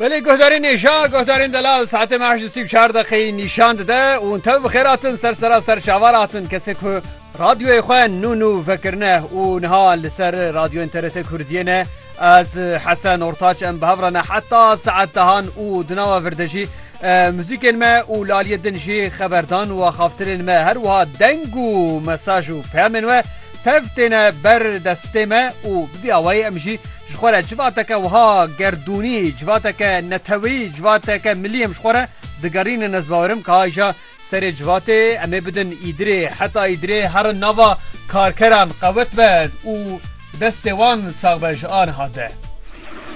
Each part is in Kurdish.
Belê guhdarên êşa guhdarên delal saetê me heşt û sî û çar deqeyî nîşan dide û hûn tev bi xêr hatin ser sera ser çavar hatin kesê ku radyoyê xwe nû nû vekirine û niha li ser radyoyên TRT Kurdiyê ne ez Hesen Ortaç em bi hev re ne heta saet dehan û di nava vir de jî muzîkên me û laliyê din jî xeberdan û axaftirên me her wiha deng û mesaj û peyamên we Tev têne ber destê me û bi vî awayî em jî ji xwe re civateke wiha gerdûnî, civateke neteweyî, civateke milî em ji xwe re digerînin. Ez bawerim ka îja serê civatê em ê bidin Îdirê. Heta Îdirê herin nava karkeran qewet be û destê wan sax be ji aniha de.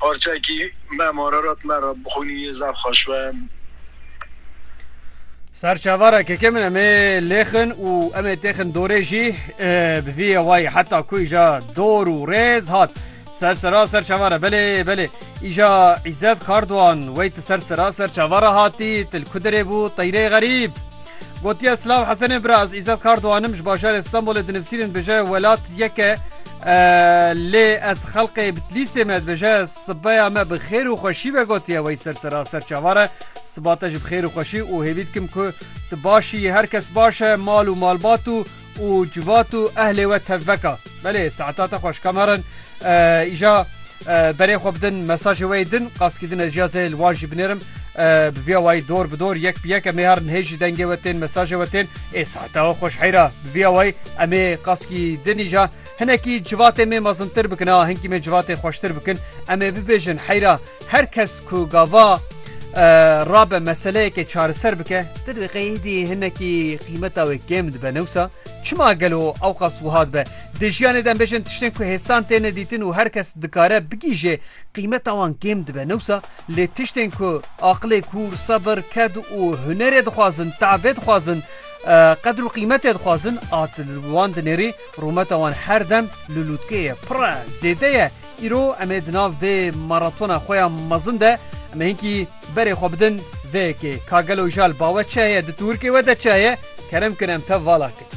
parçekî me Mararat me re bixwînî yê zaf xweş be. Ser çavara keke min em ê lêxin û em ê têxin dorê jî bi vî yewayî heta ku îja dor û rêz hat ser sera ser çavara belê belê îja îzet kardoan wey ti ser sera ser çavara hatî til ku dirê bû teyrê xerîb gotiye silav hesenê bira ez îzet kardoanim ji bajarê stenbolê dinivsînin bije welat yeke Lê ez xelqê Bitlîsê me dibêje sibeya me bi xêr û xweşî be gotiye wey ser sera ser çavare siba te ji bi xêr û xweşî û hêvî dikim ku tu başî yî her kes baş e mal û malbat û û civat û ehlê we tevveka. Belê saeta te xweş kameran îja Berê xwe bidin mesajê wê yê din qaskî din ez jî ez ê li wan jî binêrim bi vîya wayî dor bi dor yek bi yek em ê herin hê jî dengê we tên mesajê we tên ê saeta we xweş heyra bi vîya wayî em ê qaskî din îja hinekî civatê mê mezintir bikin a hinkî mê civatê xweştir bikin em ê bibêjin heyra her kes ku gava rabe meseleyekê çareser bike di diqeyî dî hinekî qîmeta wê kêm dibe newsa çima gelo ewqas wiha dibe Di jiyanê de em bêjin tiştên ku hêsan têne dîtin û her kes dikare bigihîje qîmeta wan kêm dibe ne wisa, lê tiştên ku aqilê kûr, sebir, ked û hunerê dixwazin, teebê dixwazin, qedir û qîmetê dixwazin a tu li wan dinêrî rûmeta wan her dem li lûtkê ye, pir e, zêde ye. Îro em ê di nav vê maratona xwe ya mezin de em ê hinkî berê xwe bidin vê yekê. Ka gelo îja li ba we çi heye, di tûrkê we de çi heye, kerem kin em tev vala kin.